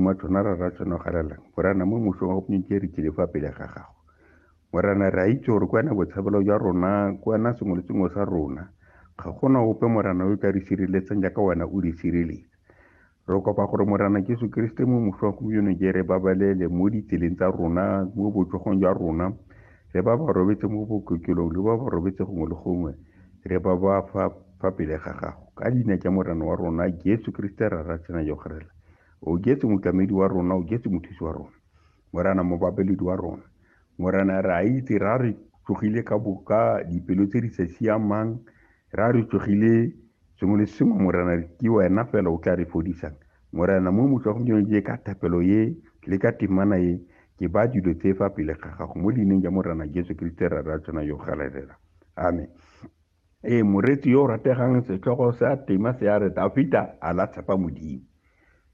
Matona ra ra tseno galelang, Morana, mo mosong wa gompientsi re tlile fa pele ga gago. Morana, re a itse gore ke wena botshabelo jwa rona, ke wena sengwe le sengwe sa rona. Ga gona ope Morana yo ka re sireletsang jaaka wena o re sireletsa. Re kopa gore Morana Jesu Keresete mo mosong wa gompieno ke re babalele mo ditseleng tsa rona, mo botsogong jwa rona, le ba ba robetse mo bokokelong, le ba ba robetse gongwe le gongwe, re ba ba fa fa pele ga gago. Ka leina tsa Morana wa rona Jesu Keresete ra ra tsena yo garela. o jetse motlamedi wa rona o jetse mothusi wa rona morana mobabeledi wa rona morana re a itse ra re tsogile ka boka dipelo tse di sa siamang ra re tsogile sengwe le sengwe morana re ke wena fela o tla re fodisang morana mo motlhogomjeno je ka thapelo ye le ka temana ye ke ba dilo tse fa pele ga gago mo leineng ja morana jesu kriste ra ra tsena yo galelela amen Ee, moreetsi yo o rategang setlhogo sa tema se a re Dafita a la tshepa Modimo.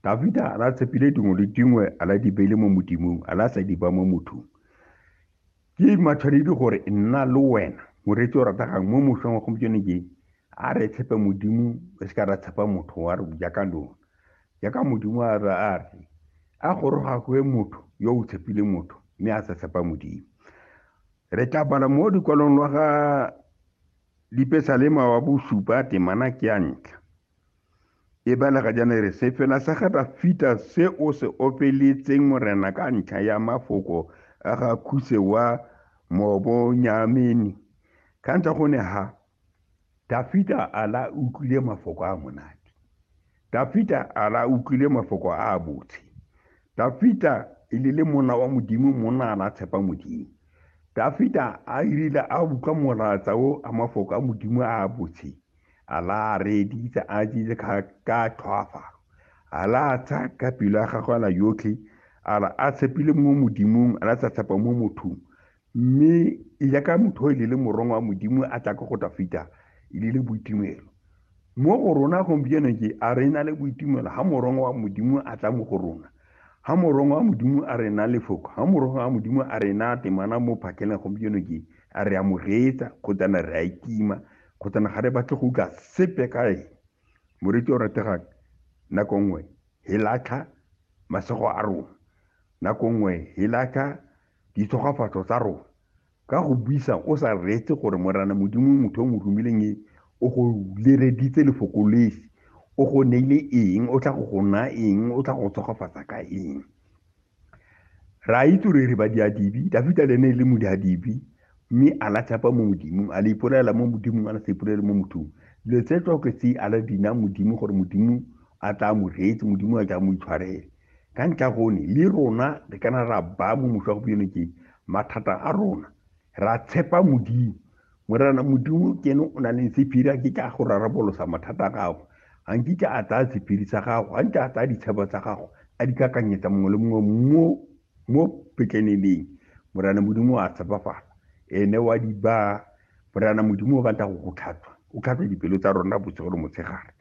Dafita a la tshepile dingwe le dingwe a la dibele mo Modimong a la sa diba mo mothong. Ke matshwanedi gore nna le wena moreetsi o rategang mo mošong wa gompieno ke a re tshepe Modimo re se ka ra tshepa motho wa re jaaka lona. Jaaka Modimo a re a re a goroga kwe motho yo o tshepile motho mme a sa tshepa Modimo. Re tla bala mo dikwalong lwa ga Lipesalema wa bosupa temana ke ya ntlha. E balega jana re se fela sa ga Dafita se o se opeletseng morena ka ntlha ya mafoko a ga Khuse wa Mobonyameni. Ka ntlha go ne ha Dafita a la utlwile mafoko a monate. Dafita a la utlwile mafoko a a botse. Dafita e le le monna wa Modimo monna a la tshepa Modimo. Dafita a irile a utlwa molatsa o a mafoko a Modimo a a botse. A la a reeditse a tsitse ka tlhoafalo. A la a tsaya ka pelo ya gagwe a la yotlhe a la a tshepile mo Modimong a la sa tshepa mo mothong. mme yaka motho e lele morong wa modimo a tla ko go tafita e lele boitumelo mo go rona gompieno ke a re na le boitumelo ga morong wa modimo a tla mo go rona ga morong wa modimo a re na lefoko ga morong wa modimo a re na temana mo phakeleng gompieno ke a re amogetsa kgotsana re a itima kgotsana ga re batle go utlwa sepe ka eng moriti o rategang nako nngwe he latlha masego a rona nako nngwe he latlha ditshogwafatso tsa rona ka go buisa o sa reetse gore morana modimo motho o mo romileng e o go lereditse lefoko lesi o go neile eng o tla go go naya eng o tla go tshogofatsa ka eng ra itse re re badiadibi dafita le ne e le modiadibi mme a la tshepa mo modimong a le ipolela mo modimong a la sa ipolele mo mothong dilo tse tsoke tse a la dina modimo gore modimo a tla mo reetse modimo a tla mo itshwarele ka ntle ya gone le rona re kana ra ba mo motho wa gompieno ke mathata a rona ra tshepa modimo morana modimo ke ene o na le sephiri a ke ka go rarabolosa mathata a gago ga nkitla a tsaya sephiri sa gago ga ntse a tsaya ditshebo tsa gago a di kakanyetsa mongwe le mongwe mo mo petleneleng morana modimo a tshepafala ene wa di ba morana modimo o rata go go tlhatswa o tlhatswa dipelo tsa rona bosigo le motshegare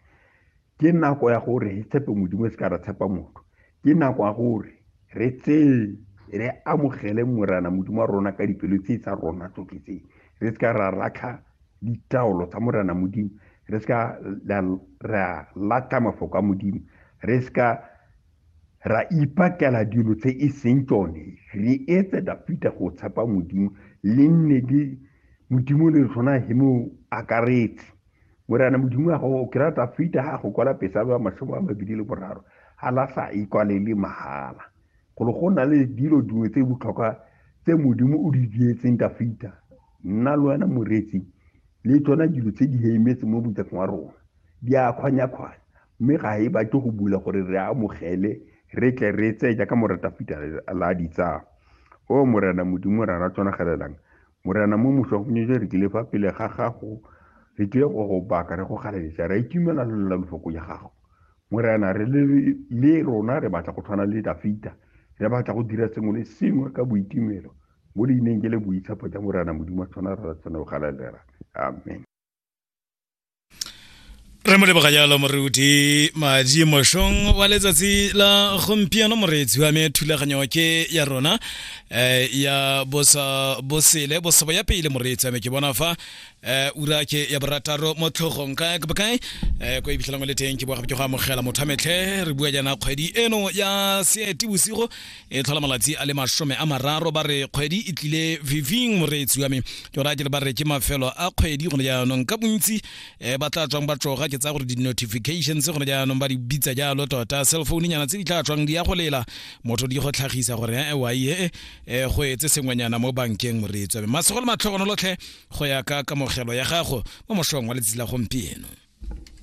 ke nako ya gore re tshepe modimo e se ka ra tshepa motho ke nako ya gore re tseye re amogele morana modimo wa rona ka dipelo tse tsa rona tsotlhe tse re se ka ra latlha ditaolo tsa morana modimo re se ka ra latlha mafoko a modimo re se ka ra ipakela dilo tse e seng tsone re etse dafita go tshepa modimo le nne le modimo le tshwana he mo akaretse morena modimo wa gago ke rata fita ga go kwala pesa ba mashomo a mabedi le boraro ga la sa e kwalele mahala golo go na le dilo dingwe tse botlhokwa tse modimo o di dietseng ka fita nna le wena moretsi le tsona dilo tse di heimetse mo botsafeng wa rona di a kgwanya-kgwanya mme ga e batle go bula gore re amogele re tle re tseye jaaka moreta fita la ditsaya o morena modimo ra ra tsonagelelang Morena mo moswa go nyetse re tlile fa pele ga gago re tlile go go baka re go galeletsa re itumela lolela lofoko ya gago morena re le rona re batla go tshwana le dafita re batla go dira sengwe le sengwe ka boitumelo mo leineng ke le boitshepo ja morena modimo tshwana re tshwane go galelela amen re mo leboga jalo moruti madi mošong wa letsatsi la gompieno moreetsi wa me thulaganyo ke ya rona um ya bosa bosele bosebo ya pele moreetsi wa me ke bona fa um ura ke ya borataro mo tlhogong kae ke bokae um ko iphitlhelang o le teng ke boa gape ke go amogela motho a metlhe re bua jaana kgwedi eno ya seetibosigo e tlhola malatsi a le masome a mararo ba re kgwedi e tlile viving moreetsi wa me ke ora ke le ba re ke mafelo a kgwedi gone jaanong ka bontsi um ba tla tswang ba tsoga ke tsaya gore di-notifications gone jaanong ba di bitsa jalo tota cell phone nyana tse di tla tswang di ya go lela motho di go tlhagisa gore ee wae ee go etse sengwenyana mo bankeng moreetsi wa me masego le matlhogonolotlhe go ya ka kamogelo ya gago mo mosong wa letsatsi la gompieno